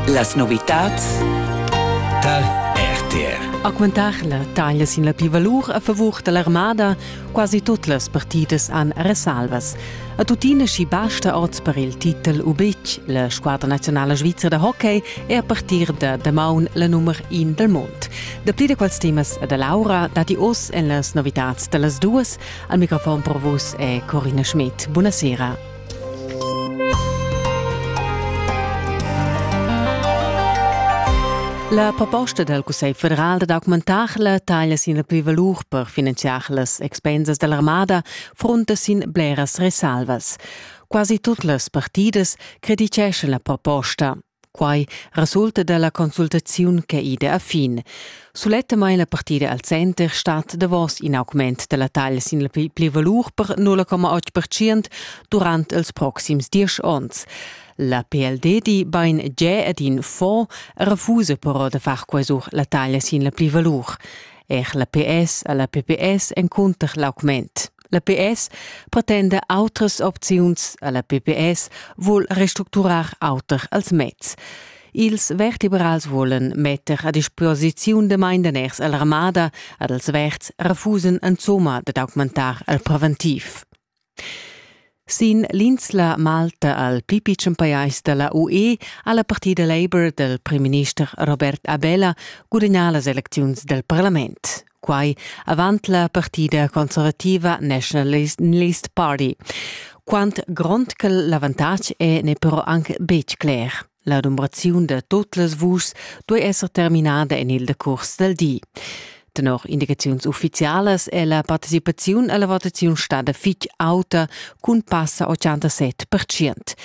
Las novitads tar RTR. Augmentar la taglia sin la plivalur a favur da l'armada, quasi tut las partidas han resalvas. A tuttina schi basta oz per il titel u betg. La squadra nazionala svizra da hockey è a partir da damaun la nummer in del mond. Da pli da quels temas da Laura dati oz en las novitads da las duas. Al microfon per vus è Corina Schmidt. Buonasera. La proposta dal Cussegl federal dad augmentar la taglia sin la plivalur per finanziar las expensas dall'armada frunta sin bleras resalvas. Quasi tut las partidas criticeschan la proposta. Quai resulta da la consultaziun ch'è ida a fin. Sulettamain la partida al center stat davos in augment da la taglia sin la pli valur per 0,8% durant ils proxims diesch onns. La PLD di bain già ad in fonds e refusa però da far quesur la taglia sin la pli valur. Er la PS a la PPS encunter l'augment. La PS pretenda autras opziuns alla PPS vuol restructurar auter als mezs. Ils vertebrals volen metter a disposiziun de maindaners all'armada, ad els verds refusen insomma de augmentar al preventiv. Sin l'insla Malta al pli pitschen pajais da la UE ha la partida Labour dal primminister Robert Abela gudagnà las elecziuns dal parlament. Quai avant la partida conservativa Nationalist Party. Quant grond che l'avantatg è n'è però anc betg cler. L'adombraziun da tot las vuschs duei esser terminada en il decurs del di. Tenor indicaziuns ufficialas è la participaziun alla votaziun stada fitg auta cun passa 87%.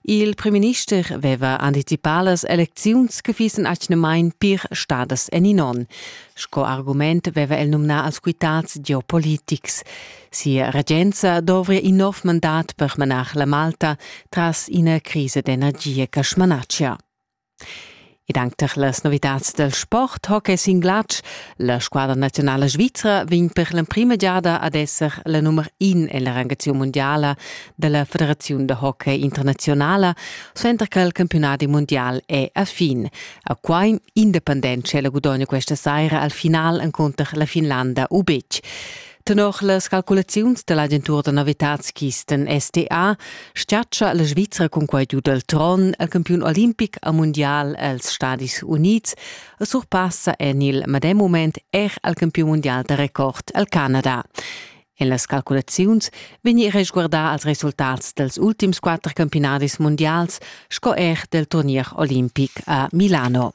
Il premierminister aveva anticipà las elecziuns che fissen atgnamain pir stadas en in onn. Sco argument aveva el numnà als quitads geopolitics. Sia regenza dovria in nov mandat per manar la Malta tras ina crisa d'energia che smanatschia. Ed anche per las novitads del sport hockey sin glatsch, la squadra nazionale svizra vegn per l'emprima giada ad esser la nummer in en la rangazione mondiale della Federazione de Hockey Internazionale, suenter che il campionati mondial è a fin. A Quaim Independente la gudogna questa sera al final incontro la Finlanda Ubec. Tenor las calculaziuns dall'agentura da novitads Kisten SDA schatscha la Svizra cun quei giu del tron el campiun olimpic a mundial els Stadis Unids e surpassa en il medem moment er al campiun mundial da record el Canada. En las calculaziuns vegni resguardà als resultats dels ultims quatter campionadis mundials sco er del turnier olimpic a Milano.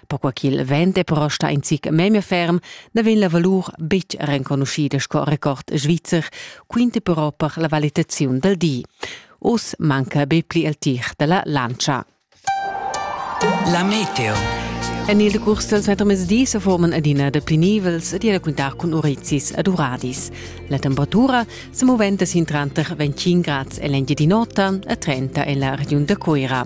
perquai ch'il vent è però stà in zic memia ferm, na vegn la valur betg renconuschida sco record svizzer, quinta però per la valitaziun dal di. Oz manca be pli il tir dalla lancia. La meteo. En il decurs dal suentermezdi se forman adina de pli nivels di a quintar cun urezis ad uradis. La temperatura se moventa sin tranter 25 grads e l'engiadin'ota e 30 en la regiun da Coira.